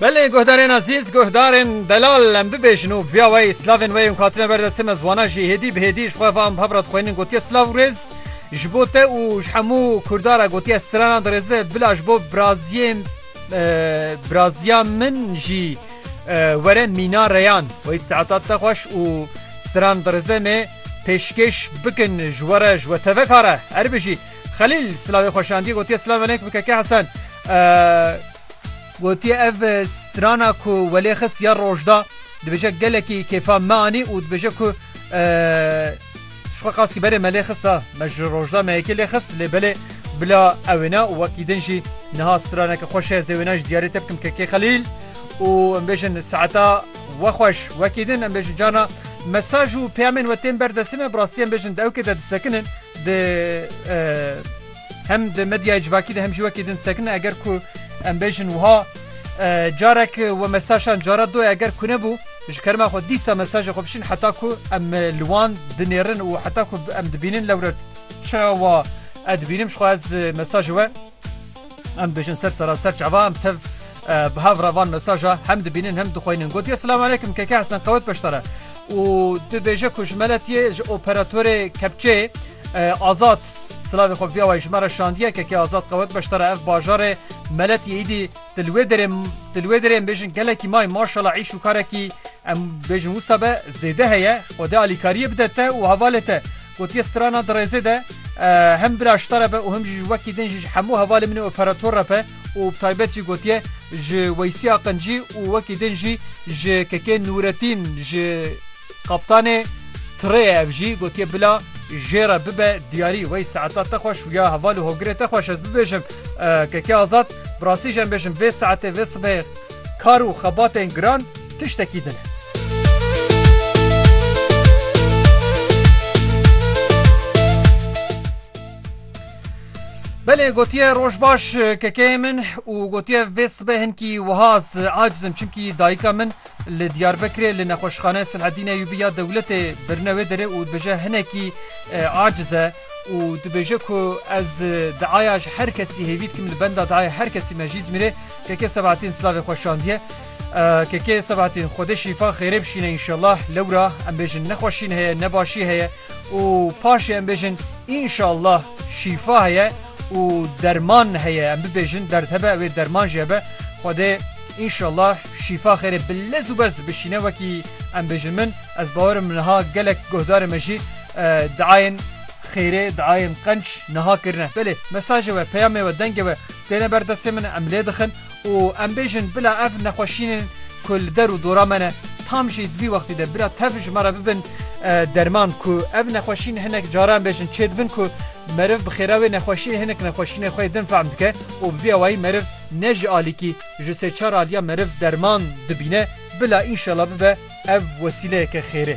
Belê guhdarên ezîz, guhdarên delal em bibêjin û bi vîya weyî slavên weyî hûn hatine ber destê me ziwana jî hêdî bi hêdî ji xwe ve an bi hev re dixwînin gotiye silav û rêz ji bo te û ji hemû kurda re gotiye strana di rêzê de bila ji bo biraziyê biraziya min jî were mîna reyan weyî saeta te xweş û stran di rêzê me pêşkêş bikin ji we re ji we tevek are erbijî. Xelîl silavê xwe şandiye gotiye silav elek bi keke Hesen. Gotiye ev strana ku welê xist ya rojda dibêje gelekî kêfa me anî û dibêje ku şixwe qaskî berê me lê xist a me ji rojda me yekê lê xist lê belê bila ewêne û wekî din jî niha straneke xweş heye zêwêne ji diyarê te bikim kekê xelîl û em bêjin saeta we xweş wekî din em bêjin carna mesaj û peyamên we tên ber destê me bi rastî em bêjin dewkê de disekinin Di hem di medyayê civakî de hem jî wekî din sekine eger ku em bêjin wiha carek we mesajan cara doye eger ku nebû ji kerema xwe dîsa mesajê xwe bişin heta ku em li wan dinêrin û heta ku em dibînin lewre çawa edbînim xwe ez mesajê we Em dibêjin ser seraser çava em tev bi hev re van mesaja hem dibînin hem dixweynin gotiye silam aleykum keke hesen qewet beştare û dibêje ku ji meletiye ji operatorê kepçeyê azad silavê xwe viya wayê ji me re şandiye keke azad qewet beştare ev bajarê meletiye îdî dilwê derê dilwê derê em bêjin gelekî may maşala îş û karekî em bêjin wisa be zêde heye xwedê alîkariyê bide te û hevalê te Gotiye strana di rêzê de hem bira şita re be û hem jî ji wekî din jî ji hemû hevalên min ê operator re be û bi taybet jî gotiye ji Weysî Aqincî û wekî din jî ji Kekê Nûretîn ji Kaptanê tirê ye ev jî gotiye bila jê re bibe diyarî wey saeta te xweş û ya heval û hogirê te xweş ez bibêjim Kekê Azad bi rastî jî em bêjim vê saetê vê sibehê kar û xebatên giran tiştekî din e. Belê gotiye roj baş kekeyê min û gotiye vê sibe hinkî wihaz acizim çimkî dayika min li Diyarbekirê li nexweşxane Silhedîne Yûbî ya dewletê birine wê derê û dibêje hinekî aciz e û dibêje ku ez diaya ji her kesî hêvî dikim li benda diaya her kesî me jî zmîrê keke sebatîn silavê xwe şandiye KK Sebahattin Xwedê şîfa xêrê bişîne înşellah lewra em bêjin nexweşîn heye ne başî heye û paşê em bêjin înşellah şîfa heye û derman heye em bibêjin derd hebe wê derman jî hebe Xwedê înşellah şîfa xêrê bi lez û bez bişîne wekî em bêjin min ez bawerim niha gelek guhdarê me jî diayên xêrê diayên qenc niha kirine belê mesajê we peyamê we dengê we têne ber destê min em lê dixin. û em bêjin bila ev nexweşînên ku li der û dora me ne tam jî di vî wextî de bila tev ji me re bibin derman ku ev nexweşîn hinek caran em bêjin çê dibin ku meriv bi xêra wê nexweşî hinek nexweşînê xwe yê din fehm dike û bi vî awayî meriv ne ji alîkî ji sê çar aliya meriv derman dibîne bila înşela bibe ev wesîleyeke xêrê.